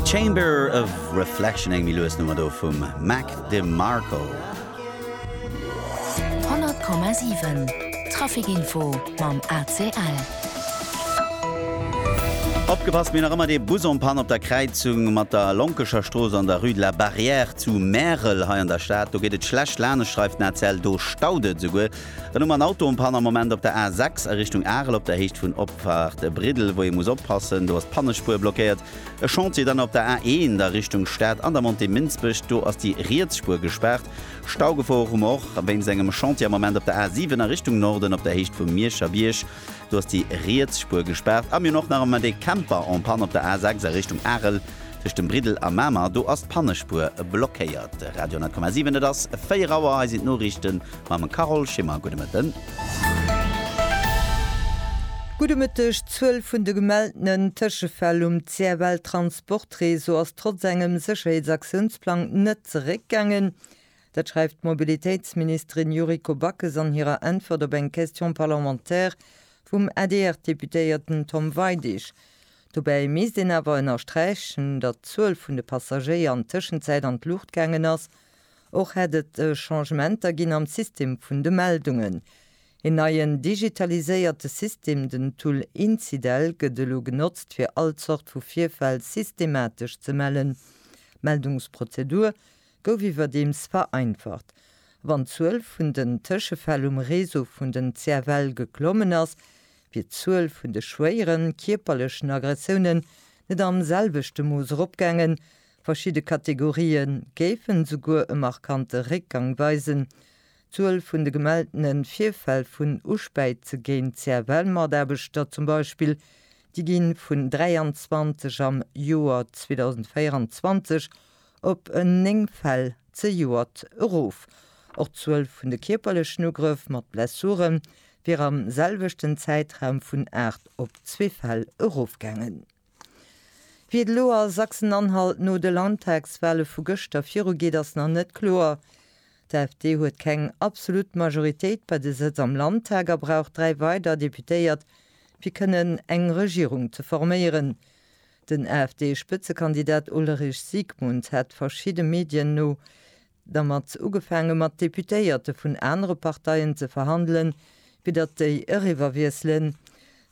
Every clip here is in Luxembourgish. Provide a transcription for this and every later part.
Chamber of Reflection, eng méi lues Nummer do vum Mac DeMarco. 100,7 Traficinfo mam ACL. Opgepasst, mir hunn nach ëmmer dee Bus en panne op der Kräizung mat der Lonkecher Strooss an der Rue de la Barrière zu Märel hei an der Stad. Do geet et schlecht laanescht, schreift den ACL. Do staut et esouguer Dann hu mer en Auto en panne am Moment op der A6 a Richtung Arel op der Héicht vun Opfahrt Briddel, wou ee muss oppassen, do ass d'Pannespuer blockéiert. E Chantier dann op der A1 a Richtung Stad an der Montée Minsbech, do ass déi riets Spuer gespaart. Staugefor hu mer och wéinst engem Chantier am Moment op der A7 a Richtung Norden op der Héicht vum Mierscher Bierg, do ass déi riets Spuer gespaart. A mir hunn och nach am Moment ee Camper en panne op der A6 a Richtung Arel tëscht dem Briddel a Mamer, do ass d'Pannespuer blockéiert. Radio 10,7 Et ass 4 Auer, hei sinn d'Noriichten. Mam Carole Schimmer, gudde Mëtten. Gudde Mëtteg. D'Zuel vun de gemeltenen Tëschefäll um CFL Transportréseau ass trotz engem Sécherheetsaktionsplang net zeréckgaangen. Dat schreift d'Mobilitéitsministerin Yuriko Backes an hirer Äntwert op eng Question parlementaire vum ADR-Deputéierten Tom Weidig. Dobäi misst een awer ënnersträichen, datt d'Zuel vun de Passagéier an Tëschenzäit an d'Luucht gaangen ass. Och hätt et Changementer ginn am System vun de Meldungen. Een neien digitaliséierte System, den Tool Incidel, gëtt elo genotzt fir all Zort vu Virfäll systematesch ze mellen. D'Meldungsprozedur gouf iwwerdeems vereinfacht. Wann d'Zuel vun den Tëschefäll um Réseau vun den CFL geklommen ass, wier d'Zuel vun de schwéieren kierperlechen Aggressiounen net am selwechte Mooss eropgaangen, Verschidde Kategorië géifen esouguer e markante Réckgang weisen. D'Zuel vun de gemelltene Virfäll vun Uspäize géint CFL-Mataarbechter zum Beispill, déi gi vun 23 am Joer 2024 op en 9 Fäll zejoert erof. Och d'Zuel vun de kierperlechen Ugrëff mat Blessure wier am selwechten Zäitraum vun 8 op zwee Fäll erofgaangen. Wéi et elo a Sachsen-Anhalt no de Landtagswale vu gëschter virugeet, ass nach net kloer. D'AfD huet keng absolut Majoritéit bei de Sëtz am Landtag a brauch dräi weider Deputéiert, fir kënnen eng Regierung ze forméieren. Den AfD-Spëtzekandidat Ulrich Siegmund hat verschidde Medien no Dermat ugefaange mat Deputéierte vun anere Parteien ze verhandelen, fir datt déi eriwwerwiesselen.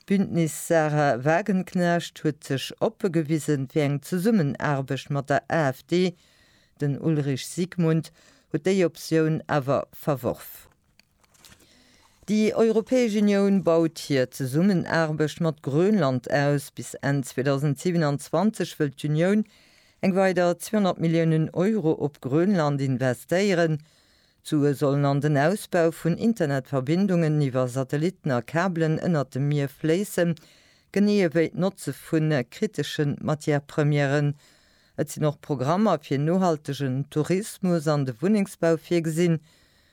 D'Bündnis Sahra Wagenknecht huet sech oppe gewise fir eng Zesummenaarbecht mat der AfD. Den Ulrich Siegmund huet déi Optioun awer verworf. Déi Europäesch Unioun baut hir Zesummenaarbecht mat Grönland aus. Bis Enn 2027 wëll d'Unioun eng weider 200 Milliounen Euro op Grönland investéieren. D'Sue sollen an den Ausbau vun Internetverbindungen iwwer Satellitten a Kabelen ënnert dem Mier fléissen, genee ewéi d'Notze vu kritesche Matière-Premièren. Et sinn och Programmer fir nohaltegen Tourismus an de Wunnengsbau virgesinn.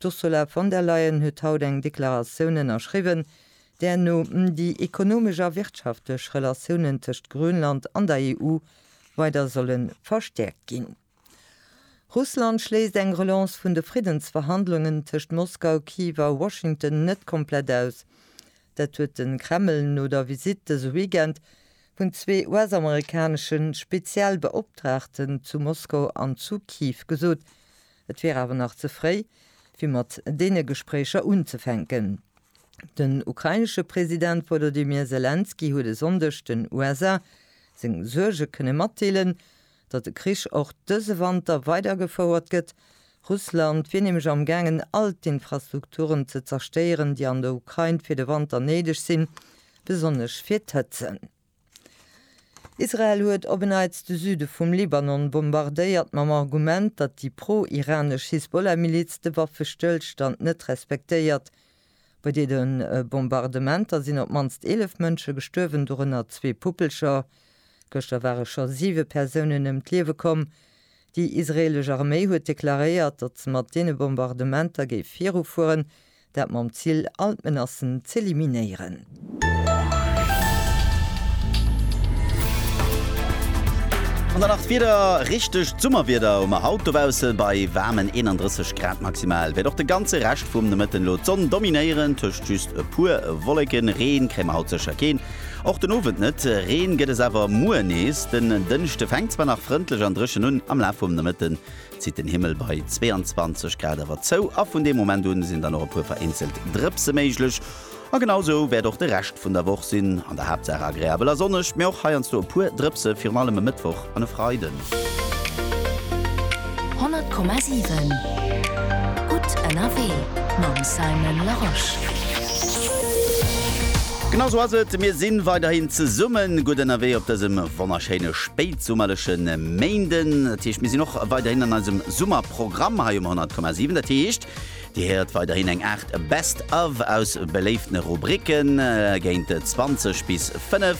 D'Ursula von der Leyen huet haut eng Deklaratioun ënnerschriwwen, där no déi ekonomesch a wirtschaftlech Relatiounen tëscht Grönland an der EU weider solle verstäerkt ginn. Russland schléisst eng Relance vun de Friddensverhandlungen tëscht Moskau, Kiew a Washington net komplett aus. Dat huet de Kreml no der Visitt dëse Weekend vun zwee US-amerikanesche Spezialbeoptraagten zu Moskau an zu Kiew gesot, Et wier awer nach ze fréi, fir mat deene Gespréicher unzefänken. Den ukrainesche President Wolodymyr Selenskyj huet e Sonndeg den USA seng Suerge kënne matdeelen, datt de Krich och dëse Wanter weidergefouert gëtt. Russland wier nämlech am gaangen, all d'Infrastrukturen ze zerstéieren, déi an der Ukrain fir de Wanter néideg sinn, besonnesch fir d'Hëtzen. Israel huet op en Neits de Süde vum Libanon bombardéiert, mam Argument, datt déi pro-iranesch Hisbollah-Miliz de Waffestëllstand net respektéiert. Bei deene Bombardementer sinn op d'mannst 11 Mënsche gestuerwen, dorënner zwee Puppelcher. Gëschter ware scho siwe Persounen ëm d'Liewe komm. Déi israeelesch Arméi huet deklaréiert, datt se mat deene Bombardementer géif virufueren, Dat mam Ziel, all d'Menacen z'eliminéieren. An dann nach d'Wieder, Richtegt Summerwieder hu mer haut dobaussen, bei waarmen 31 Grad maximal wäert och de ganze Rescht vum Nomëtten elo d'Sonn dominéieren, tëscht just e puer Wolleken. Reen kréie mer haut sécher keen, och den Owend net. Reen gëtt es awer muer nees. Den Dënschde fänkt zwar nach frëndlech an dréchen un, am Laf vum Nomëtten zitt den Himmel bei 22 Grad awer zou a vun deem Moment un sinn dann och e puer vereenzelt Drëpse méiglech. A genau esou wäert och de Rescht vun der Woch sinn, an der Haaptsaach agreabel a sonneg, mee och heiansdo e puer Drëpse, virun allem e Mëttwoch an e Freiden. 100,7 gutt ënnerwee mam Simon Larosche. Genau sou ass et, mir si weiderhin zesummen gutt ënnerwee op dësem wonnerschéine Spéi. Summerleche Méinden, dat heescht mir sinn och weiderhin an eisem Summerprogramm hei um 100,7. Dat heescht Dir héiert weiderhin eng Aart Best of aus beléiftene Rubricken. Géint 20 bis 5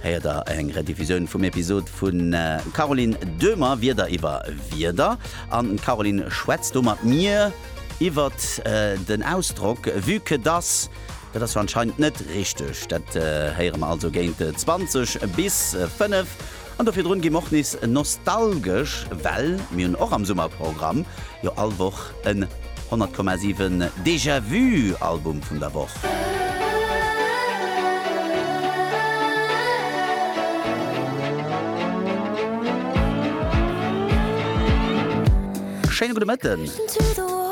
héiert der eng Rediffusioun vum Episod vun Caroline Döhmer Wieder iwwer Wieder. An d'Caroline schwätzt do mat mir iwwert den Ausdrock Vu que das. Dat ass jo anscheinend net richteg. Dat héiere mer also géint 20 bis 5. An do virdrun gi mer och nees nostalgesch, well mir hunn och am Summerprogramm jo all Woch en 100,7 Déjà-vu-Album vun der Woch. Schéine gudde Mëtten.